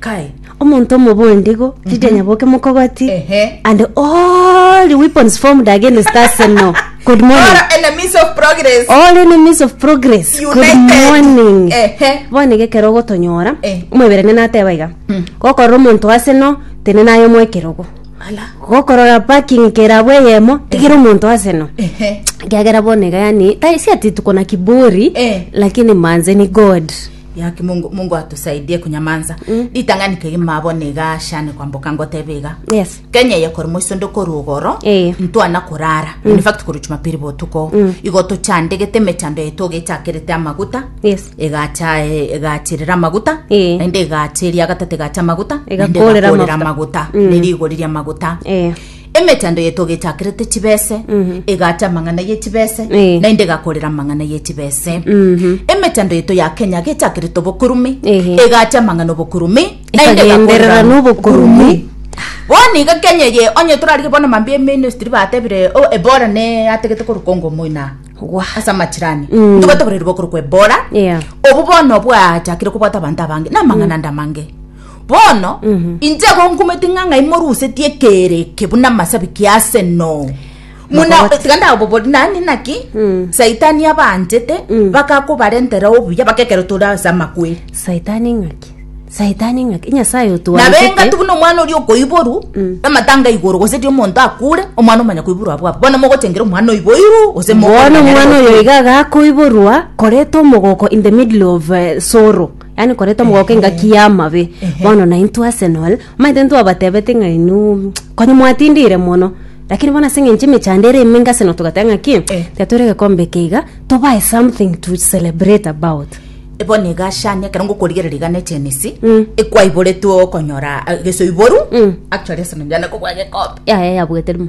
Kai. omonto omobe oende igo tindi anyaboke mokogoti Ehe. and all the weapons formed against us no good All morning our enemies of progress. all enemies of progress good United. morning Ehe. bono iga ekero ogotonyora Eh. omoiberania nateba iga Mm. gokorora omonto ase no tene naye omoe ekerogo Ala. gokorora parking kerabo eyemo tigera omonto ase no Ehe. kiagera bono iga yani tai si ati tuko na kiburi Eh. lakini manze ni god Yaki mungu mungu atusaidie kunyamansa Mm. ritang'ani keri mabo negashane kwamboka ngotebe iga Yes. kenya eye kori moiso ndokori ogoro Eh. ntwana korara Mm. in fact kori jumapili botuko Mm. igo tochandegete emechando yaito gechakerete amaguta Yes. egacha eh, egachirira amaguta Eh. naende egacheria agatata egacha amaguta naende Egakorera egakorera amaguta. amaguta Mm. nerigori ria amaguta Eh. Emechando yaito gechakerete chibese, egaacha amang'ana ye chibese, Eh. naende egakorera amang'ana ye chibese. Emechando yaito ya Kenya gechakerete obokurume, Ehe. egaacha amang'ana obokurume, naende Ekagenderera egakorera nobokurume. Bono iga Kenya eye, onye torarige bono mambia eministry batebire, oh, Ebola ne ategete korwa Congo moina. Gwa. Ase amachirani. Mm. Ntobwate oborwaire bokorokwa Ebola. Yeah. Obo bono bwachakire kobwata abanto abange, namang'ana ande amange. bono inche igo nkumeti ng'a ng'ai morusetie ekeero eke buna amasabiki ya Arsenal muna Makobati. tiga ndabobori nani naki saitani abanchete bakakobarentera obuya bakekero tore ase amakweri saitani ng'aki saitani ng'aki nyasaye nabenga otwanchete tubuna omwana oria okoiboru amatanga igoro gose ri omonto akure omwana omanya koiborwa abwo abwo bono mogochengera omwana oiboiru gose bono omwana oyo iga agakoiborwa koreta omogoko in the middle of eh, sorrow yaani koreta omogoko engaki y'amabe bono naintwe arsenal omanyete ntwabatebete ng'a inwe konya mwatindire mono lakini bono ase eng'encho emechando ere emenge arsenal togateba ng'a ki tiga toire egekombe eke iga tobae something to celebrate about bono iga shani ekero ngokorigereria iga ne chenisi Mm. ekwaiboretwe okonyora ah, gesoiboru Mm. actually arsenal yane kobua gekombe yaya yabwete rimo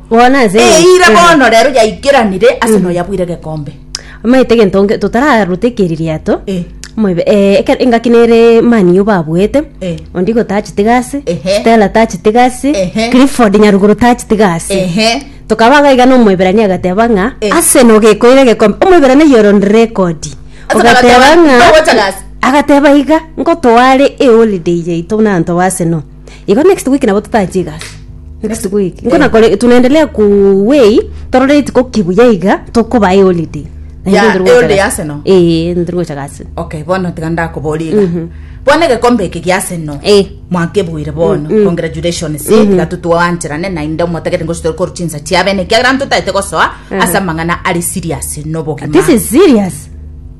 Bono ase eng'encho- Eira Aha. bono rero yaikeranire ase noyabwire gekombe. Omanyete egento nge- totararute eke ririato Eh. omoibe eh, eke- engaki nere mani yu babuete Eh. ondigo tachete gasi Ehe. stella tachete gasi Ehe. clifford nyaruguru tachete gasi Ehe. tokaba iga iga na omoiberania agateba ng'a Eh. aseno gekoire gekombe omoiberania yoro rekodi Ase ogateba agateba, ng'a "Togocha gasi." agateba iga nkotoare eholiday yaito buna abanto ba aseno igo next week nabo totachi egasi next week nko nakore tunaendelea kuwei torore rituko kibuya iga tokoba e holiday Na Ya, inche ndiri e gocha holiday gasi. Arsenal? ee ndiri gocha gasi okay bono tiga ndakoboria iga bono egekombe eke gia Arsenal Eh. mwakebuire bono congratulations tiga totwancherane naende omotagete ngochi tori korwa chinsa chiabene ekiagera ntotaete gosoa ase amang'ana are serious nobogima this is serious